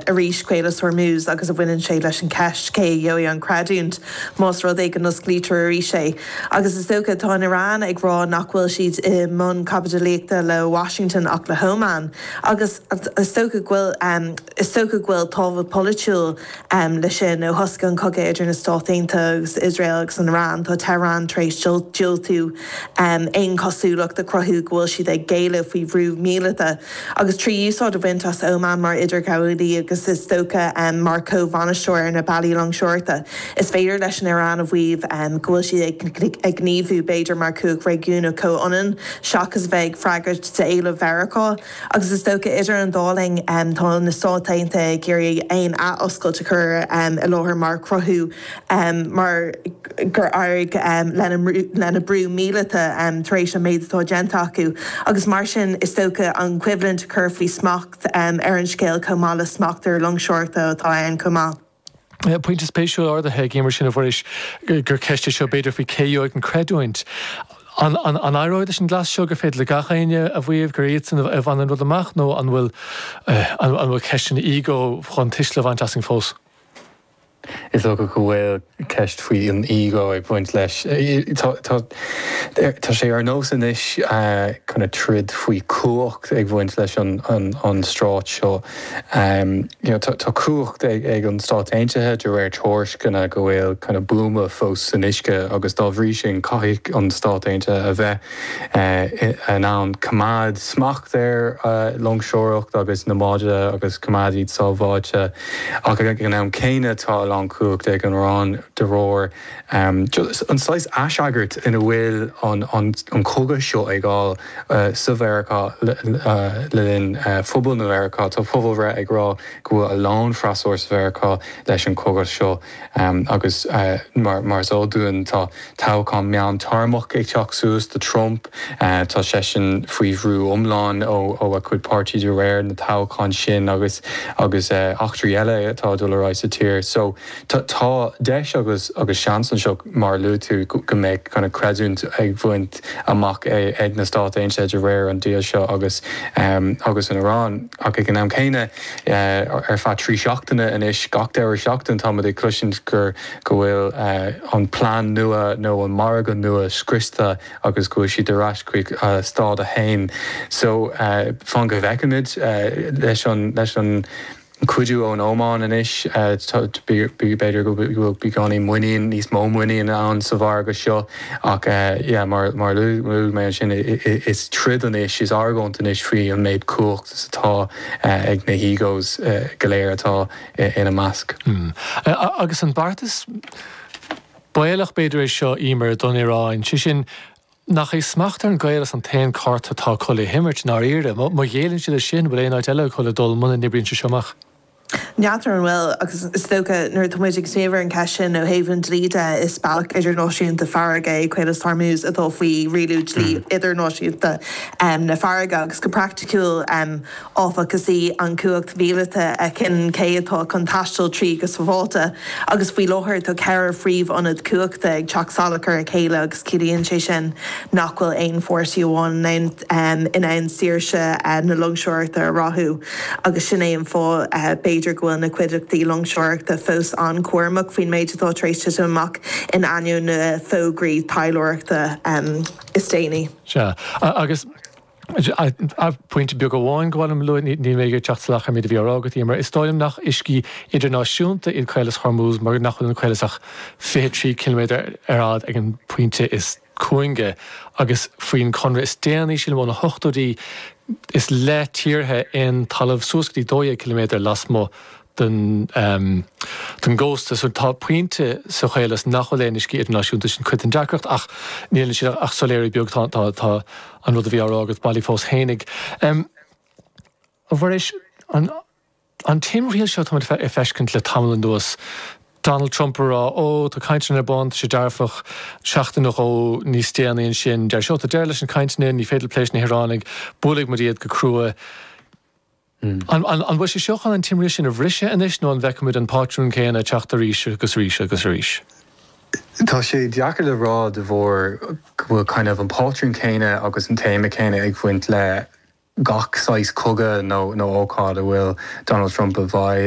arís, Caolas Hormuz agus baineann sé leis an ceist cé a gheobhaidh an creidiúint más rud é go n-osclaítear arís é. Agus is dócha, tá an Iran ag rá nach bhfuil siad i mbun caibidlíochta le Washington ach le hÓman. Agus is dócha go bhfuil. Is dócha go bhfuil tábhacht polaitiúil leis sin. Ó thosaigh an cogadh idir na Stáit Aontaithe agus Iosrael agus an Iran, tá Tehran tar éis diúltú aon chosúlacht a chruthú go bhfuil siad ag géilleadh faoi bhrú míleata. agus trí úsáid a bhaint as Oman mar idirghabhálaí agus is dócha mar chomh-bhainisteoir ar na bealaí loingseoireachta, is féidir leis an Iaráin a mhaíomh go bhfuil siad ag gníomhú b'fhéidir mar chumhacht réigiúnach comhionann seachas a bheith ag freagairt d'éilimh Mheiriceá. Agus is dócha idir an dá linn tá na Stáit Aontaithe ag iarraidh aon athoscailt a chur i láthair mar chruthú mar gur éirigh lena mbrú míleata tar éis an méid atá déanta acu, agus mar sin is dócha an choimhlint a chur faoi smacht ar an scéal chomh maith le smacht ar loingseoireachta atá ann chomh maith. Pointe spéisiúil ardaithe ag Emer sin, a Mhuiris, gur ceist é seo b'fhéidir faoi cé a gheobhaidh an creidiúint. An éireoidh leis an gcleas seo gur féidir le gach éinne a mhaíomh gur iadsan a bhain an rud amach nó an bhfuil an bhfuil ceisteanna ego chun tuisle a bhaint asainn fós? Is dócha go bhfuil ceist faoi an ego ag baint leis. Tá sé ar nós anois kind of troid faoi chumhacht ag bhaint leis an strait seo. Tá cumhacht ag an Stáit Aontaithe de réir tuairisceana go bhfuil kind of buama fós san uisce agus dá bhrí sin caithfidh an Stáit Aontaithe a bheith in ann coimeád smacht ar loingseoireacht agus na báid agus coimeád iad sábháilte ach ag an am céanna tá a lán cumhachta ag an Iran de réir an saghas aisagairt in a bhfuil an cogadh seo ag fáil sa Mheiriceá le linn phobail na Mheiriceá. Tá pobalbhreith ag rá go bhfuil a lán freasúra sa Mheiriceá leis an cogadh seo. Agus mar is eol dúinn tá toghchán meán téarmach ag teacht suas do Trump. Tá seisean faoi bhrú iomlán ó a chuid páirtí de réir na toghchán sin agus agus eachtraí eile atá ag dul ar aghaidh sa tír. So tá deis agus agus seans anseo mar a luaigh tú go mbeidh kind of creidiúint ag bhaint amach ag na Stáit Aontaithe de réir an deal seo agus agus an Iran ach ag an am céanna Ar feadh trí seachtaine anois, gach deireadh seachtain, táimid ag cloisint gur, go bhfuil an plean nua nó an margadh nua scriosta agus go bhfuil siad ar ais chuig stád a haon. So, fan go bhfeicimid. Leis an cuidiú ón Óman anois, b'fhéidir go bhfuil beagáinín muinín, níos mó muiníne ann sa mhargadh seo ach yeah, mar a luaigh mé ansin, is troid anois, is argóint anois faoi an méid cumhacht. 's atá ag na h-egos go léir atá ina measc. Hm. Agus an beartas baolach b'fhéidir é seo, Emer, don Iráin, sé sin, nach é smacht ar an gcaolas an t-aon chárta atá acu le himirt, i ndáiríre? Má ghéilleann siad air sin, an bhfuil aon áit eile acu le dul muna n-oibríonn sé seo amach? N'fheadar an bhfuil, ach is dócha nuair atá muid ag smaoineamh ar an cheist sin ó thaobh an dlí de, is bealach idirnáisiúnta farraige é Caolas Hormuz atá faoi rialú dlí idirnáisiúnta na farraige, agus go praiticiúil, áfach, is í an chumhacht mhíleata a chinneann cé atá chun taisteal tríd go sabháilte, agus faoi láthair tá ceithre phríomhionad cumhachta ag teacht salach ar a chéile agus ciallaíonn sé sin nach bhfuil aon pháirtí amháin in ann saoirse na loingseoireachta a ráthú. agus sin é an fáth b'fhéidir go bhfuil na cuideachtaí loingseoireachta fós an-chúramach faoin méid atá tar éis titim amach in ainneoin na bhfógraí taidhleoireachta is déanaí. Sea. Agus pointe beag amháin, gabh mo leithscéal, níl mé ag iarraidh teacht salach ar an méid a bhí á rá agat, Emer. Is dóigh liom nach uiscí idirnáisiúnta iad Caolas Hormuz mar nach bhfuil an Caolas ach fiche trí ciliméadar ar fhad ag an bpointe is. cúinge agus faoin chonradh is déanaí sin ó na hochtóidí is le tíortha aon talamh suas go dtí 12 ciliméadar lasmuigh den gcósta. So tá pointe sa chaolas nach bhfuil aon uiscí idirnáisiúnta, sin cuid den deacracht ach níl ansin ach soiléiriú beag, tá an rud a bhí á rá agat bailí fós fhéinig. A Mhuiris, an. An timthriall seo táimid ag feiscint le tamall anuas, Donald Trump ag rá Ó, tá cainteanna ar bun, tá sé dearfach, seachtain nó dhó níos déanaí ansin deir sé Ó, tá deireadh leis na cainteanna, ní féidir plé leis na hIaránaigh, buailfidh muid iad go crua. An bhfuil sé seo chun an timthriall sin a bhriseadh anois nó an bhfeicfimid an pátrún céanna ag teacht arís agus arís agus arís? Tá sé deacair le rá de bharr go bhfuil kind of an pátrún céanna agus an téama céanna ag baint le gach saghas cogadh nó ócáid a bhfuil Donald Trump i bhfeidhm.